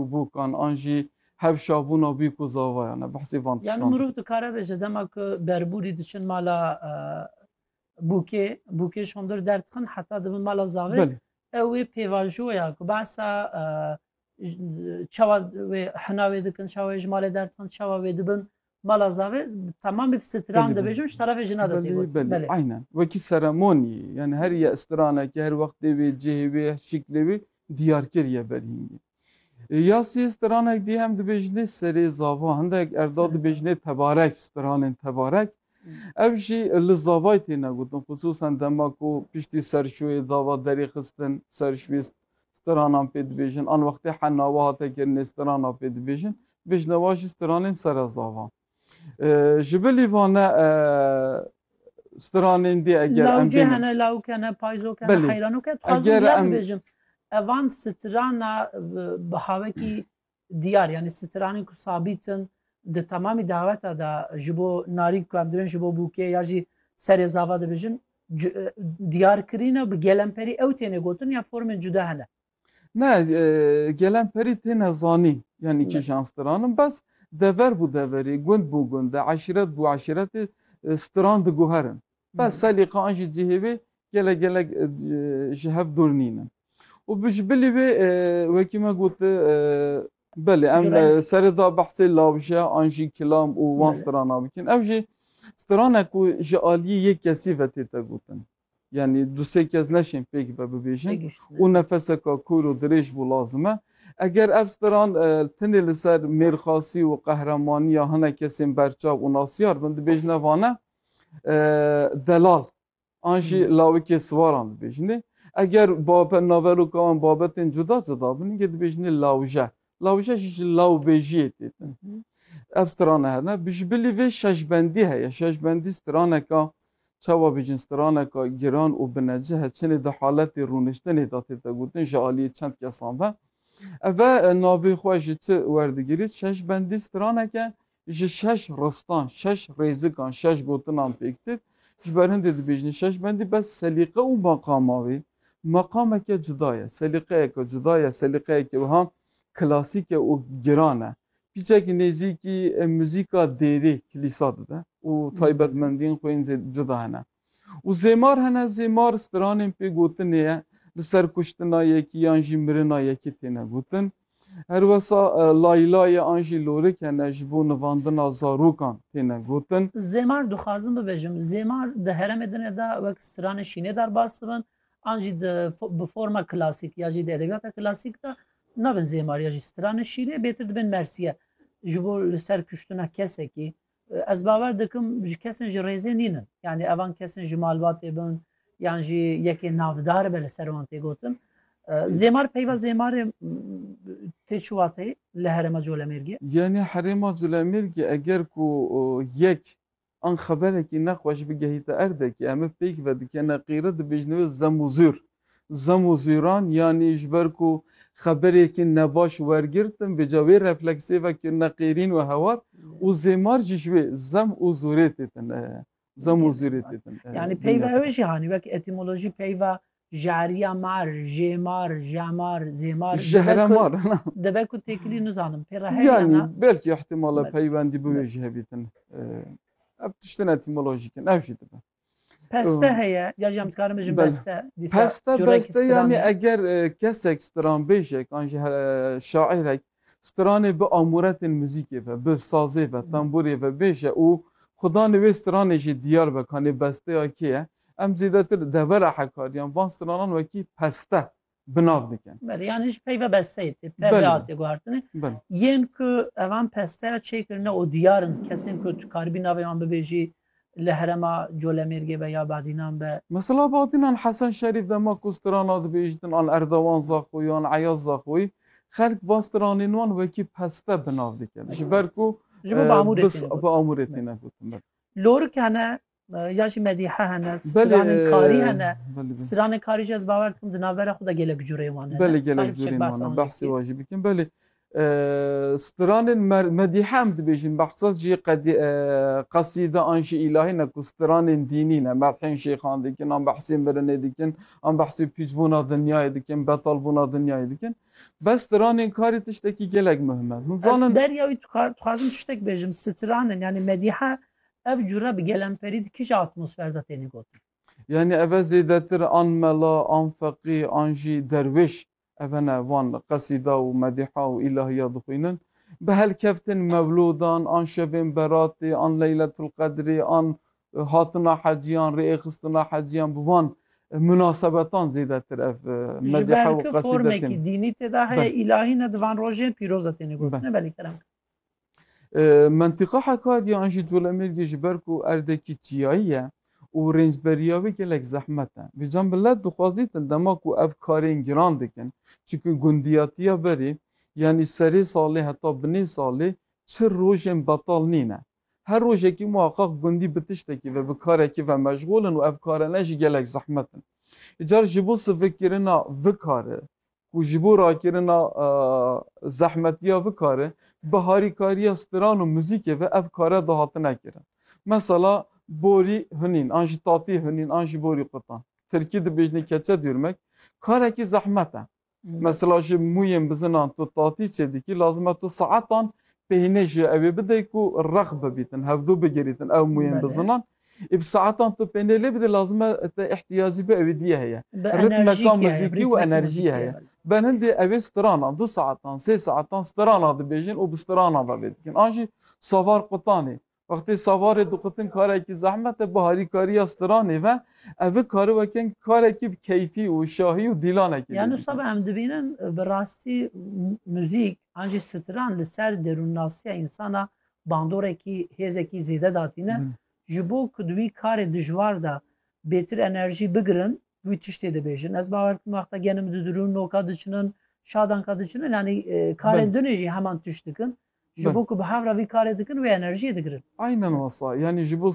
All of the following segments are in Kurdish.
û bûkan an jî hevşabûna bîk û zavayan e. Behsê van tiştan. Yani mirov dikare bêje dema ku berburî diçin mala bûkê, bûkê ji hundir derdixin heta divin mala zavê. Belê. Ew wê pêvajoya ku behsa çawa wê hina wê dikin, çawa wê ji malê derdixin, çawa wê dibin Bala zavê tamam bi stran de bejim şu tarafê jina de têgot. Belê, aynen. Wekî seremonî, yani her ye stranekî, her wextê wê, cihê wê, şiklê wê diyar kiriye belhîngî. E, ya sê stranek dî hem dibêjinê serê zava, hindek erdal dibêjinê tebarek, stranên tebarek. Ev jî li zavay têne gotin, xisûsan dema ku piştî serşoyê zava derê xistin, serşoyê stranan pê dibêjin. An wextê henna we hate kirinê strana pê dibêjin. Bêjna wa jî stranên sere zavan. Ji bilî vane stranên dê eger em Lawcê bênin. hene, lawik hene, payzok hene, Belê. heyranok hene. Dixwazim Eger duyan em- bibêjim. Evan strana bi havekî Diyar yanî stranên ku sabît in di temamî daweta de ji bo narî ku em dibin ji bo bûkê ya jî serê zava dibêjin diyar kirîne bi gelemperî ew têne gotin ya formên cuda hene. Ne gelemperî têne zanîn yanî kîjan stran in bes dever bû deverê, gund bû gundê, eşîret bû eşîretê stran diguherin. Bes Selîqa an jî cihê wê gelek gelek ji hev dûr nîne. Û bi ji bilî wê wekî me got belê em serê da behsê lawje an jî kilam û wan strana bikin. Ev jî strane ku ji aliyê yek kesî ve tê te gotin. Yani du sê kes neşên pêk be bibêjin û nefeseka kûr û dirêj bû lazim e. Eger ev stran e, tenê li ser mêrxasî û qehremaniya hinek kesên berçav û nasyar bin dibêjine vane. Delal an jî hmm. lawikê siwaran dibêjinê. Eger babe naveroka an babetên cuda cuda bin gê dibêjinê lawje. Lawje jî ji lawbêjiyê têtin. Hmm. Ev strane hene. Bijbilî vê şeşbendî heye. Şeşbendî straneka çawa bêjin straneka giran û binece heçinê di haletê rûniştinê de tête gotin ji aliyê çend kesan ve. Eve navê xwe ji çi werdigirît şeşbendî straneke Ji şeş ristan, şeş rêzikan, şeş gotinan pêk dit. Ji ber hindê dibêjin Şeşbendî bes selîqe û meqama wê meqameke cuda ye, selîqeyeke cuda ye, selîqeyeke wiha klasîk e û giran e. Pîçekî nêzîkî muzîka dêrê, kilîsa dide û taybetmendiyên xwe yên zêde cuda hene. Û zêmar hene, zêmar stranên pê gotinê ye, li ser kuştina yekî yan jî mirina yekî têne gotin. Her wesa laylayê an jî lorik hene ji bo nivandina zarokan têne gotin. Zêmar dixwazim bibêjim, zêmar di herêmê din de wek stranên şînê derbas dibin an jî di bi forma klasîk ya jî di edebiyata klasîk de nabin zêmar ya jî stranên şînê bêtir dibin mersiye ji bo li ser kuştina kesekî, Ez bawer dikim ji kesên ji rêzê nîn in. Yanî evan kesên ji malbatê bin yan jî yekê navdar be li ser wan tê gotin. Zêmar peyva zêmarê tê çi wateyê li herêma Colemêrgê? Yanî herêma Colemêrgê eger ku yek an xeberekî nexweş bigehîte erdekê, em ê pêk vedikene qîret dibêjin wê zemûzûr. Zemozîran yanî ji ber ku xeberêkî nebaş wergirtin vêca wê refleksê ve kirine qêrîn û hewar û zêmar jî ji wê zem û zûrê têtin zem û zûrê têtin Yanî peyva ew jî hanî wek etîmolojî peyva jariya mar, jêmar, jemar, zêmar Jehremar dibe ku têkilî nizanim pê re heye ya na? Yanî belkî îhtîmal e peywendî bi wê jî hebîtin. Ev tiştin etîmolojîk in ev jî dibe. Peste heye ya jî em dikarin bijin Bela. beste dîsa Peste corekî beste stranê. yanî eger e, kesek stranbêjek an jî he- e, şaîrek stranê bi amuretên muzîkê ve, bi sazê ve, temburê ve bêje û xudanê wê stranê jî diyar be kanê besteya kê ye. Em zêdetir devera Hekariyan van stranan wekî peste bi nav dikin. Belê yan hîç peyve besteyê tê PVA tê guhertine. Yên ku evan pesteya çêkirine û diyar in kesên ku tu karibî navê wan bibêjî li herema Colemêrgê be ya Badînan be. Mesela Badînan Hesen Şerîf dema ku strana dibêjtin an Erdogan Zaxoyî an Eyaz Zaxoyî xelk va stranên wan wekî peste bi nav dikin. Ji ber ku ji bo bi amûrê tîne gotin. Lorikene Ya jî medîhe hene, stranên karî hene. Stranên karî jî ez bawer dikim di navbera xwe de gelek cureyên wan hene. Belê gelek cureyên wan hene. Behsê wan jî bikin. Belê stranên medîhe em dibêjin behsa jî qesîde an jî îlahî ne ku stranên dînî ne. Medhên şêxan dikin, an behsê mirinê dikin, an behsê pîçbûna dinyayê dikin, betalbûna dinyayê dikin. Bes stranên karî tiştekî gelek muhim e. Hûn zanin. Derya wî dixwazim tiştek bêjim. Stranên yanî medîhe Ev cure bi gelemperî di kija atmosfer de têne gotin? Yanî ev e zêdetir an mela, an feqî, an jî derwêş ev ne van qesîda û medîha û îlahiya dixwînin. Bi helkeftin mewlûdan, an şevên beratê, an leyletulqedrê, an hatina hecî, an rêxistina hecî yan bi van munasebetan zêdetir ev medîha û qesîde têne. Ji ber ku formekî dînî tê de heye, îlahî ne di van rojên pîroz de têne gotin. Belê kerem. Mentiqa Hekariya an jî Colemêrgê ji ber ku erdekî çiyayî ye û rêncberiya wê gelek zehmet e. Vê can millet dixwazîtin dema ku ev karên giran dikin çunku gundiyatiya berê yanî serê salê heta binê salê çi rojên betal nîne. Her rojekî muheqeq gundî bi tiştekî ve bi karekî ve meşxûl in û ev kara ne jî gelek zehmet in. Îcar ji bo sivikkirina vi kari ku ji bo rakirina zehmetiya vi karê bi harîkariya stiran û muzîkê ve ev kare dihatine kirin. Mesela borî hunîn an ji tatî hunîn an ji borî qutan. Tirkî dibêjne keçe dûrmek karekî zehmet e. Mesela ji mûyên bizinan tu tatî çêdikî lazim e tu saetan peynê ji ewê bidey ku rex bibîtin, hevdû bigirîtin ew mûyên bizinan Ê bi saetan tu pênê lê bidî lazim e te îhtiyacî bi ewê dîyê heye. Bi Ritmeka enerjîkî heye, muzîkî û ritmîk enerjî muzîkî ye heye. belê. Benhindê ewê strana, du saetan, sê saetan strana dibêjin û bi strana ve vê dikin. An jî savar qutanê. Wextê savarê diqutin karekî zehmet e, bi harîkariya stranê ve evi kari wekin karekî bi keyfî û şahî û dîlanekî vê Ya dikin. nusab em dibînin bi rastî muzîk an jî stran li ser derûnnasiya însan a bandorekî hêzekî zêde datîne ji bo ku di wî karê dijwar de bêtir enerjî bigirin wî tiştê dibêjin. Ez bawer dikim wexta genim didirûn noka diçinin şadanka diçinin yanî karên dunê jî heman tişt dikin. Ji bo ku bi hev re vî karê dikin wê enerjiyê digirin. Aynen wasa yanî ji bo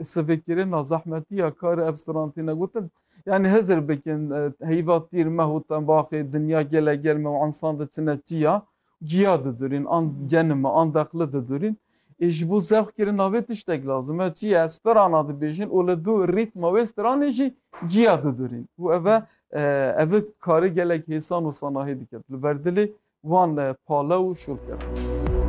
sivekirina zehmetiya karê ev stran têne gotin. Yanî hizir bikin heyva tîr meh û tembaxê dinya gele germ û ensan diçine çiya Giya didurîn an genime an deqli didurîn ê ji bo zevq kirina vê tiştek lazim e. Çi ye ez strana dibêjin û li dû rîtma wê stranê jî giya didurîn û ev e ev e karê gelek hêsan û sanahî diket li ber dilê wan pale û şûl kevin.